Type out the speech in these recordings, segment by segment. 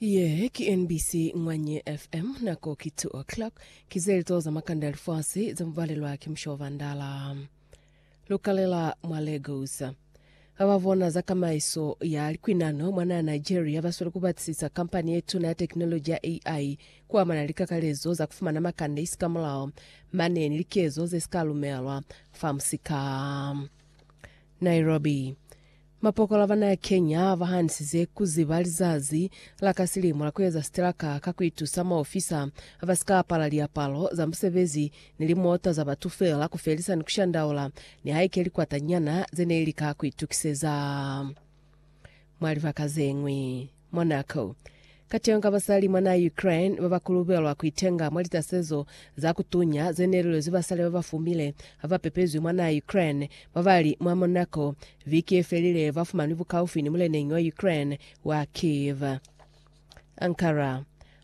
Ye ki NBC Ngwanye FM, nako ki 2 o'clock. Ki zelito za makanda ya lifasi za mubalelwa ki musho wa bandala. Lukalela mwa Lagos. Ba ba bona za kamaiso ya likwinano mwa naha Nigeria ba sweli ku batisisa kampani ye tuna ya tekinoloji ya AI ku amana ni likakalezo za ku fumana makanda isi ka mulao, mane ni likezo ze si ka lumelwa fa musika. Nairobi. Mapokola ba naya Kenya ba hanisize ku ziba lizazi la ka silimo la ku eza siteraka ka ku itusa maofisa ba si ka apala liapalo za musebezi ni limota za batu feela ku felisa ni ku shandaula nihaike likwata nyana ze ne li lika ku itukiseza mwa libaka ze ñwi. Monaco. Kateño ka basali mwa naha ya Ukraine ba ba kulubelwa ku itenga mwa litasezo za ku tunya ze ne li lwezi basali ba ba fumile ha ba pepezwi mwa naha ya Ukraine ba ba li mwa Monaco viki ye felile ba fumanwi bukaufi ni muleneñi wa Ukraine wa Kyiv. Ankara.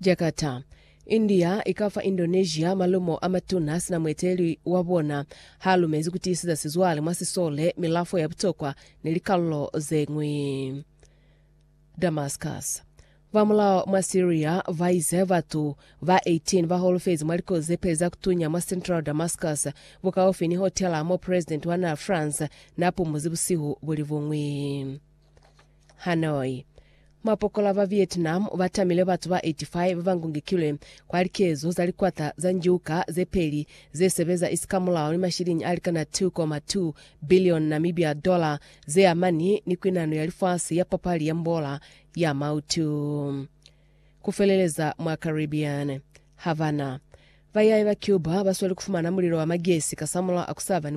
Jakarta, India ikafa Indonesia malumo amatuna sina mueteleli wabona haalumezi kutiisiza sizwale mwa sisole, milafo ya butokwa ni likalulo zeñwi. Damascus, Bamulao mwa Syria baize batu ba 18 baholofezi mwa likozi zepeli za kutunya mwa central Damascus, bukaufi ni hotela mo president wa naa France naapumuzi busihu bulibuñwi. Hanoi. Mapokola ba Vietnam ba tamile batu ba 85 ba ba ngungikilwe kwa likezo za likwata za njuka ze peli ze sebeza isikamulao ni mashiliñi a likana 2.2 billion Namibia dollar ze amani ni kwinano ya lifasi ya papali ya mbola ya mautu ku feleleza mwa Caribbean. Havana. Bayai ba Cuba ba sweli ku fumana mulilo wa magesi kasamulaho a ku sa ba ni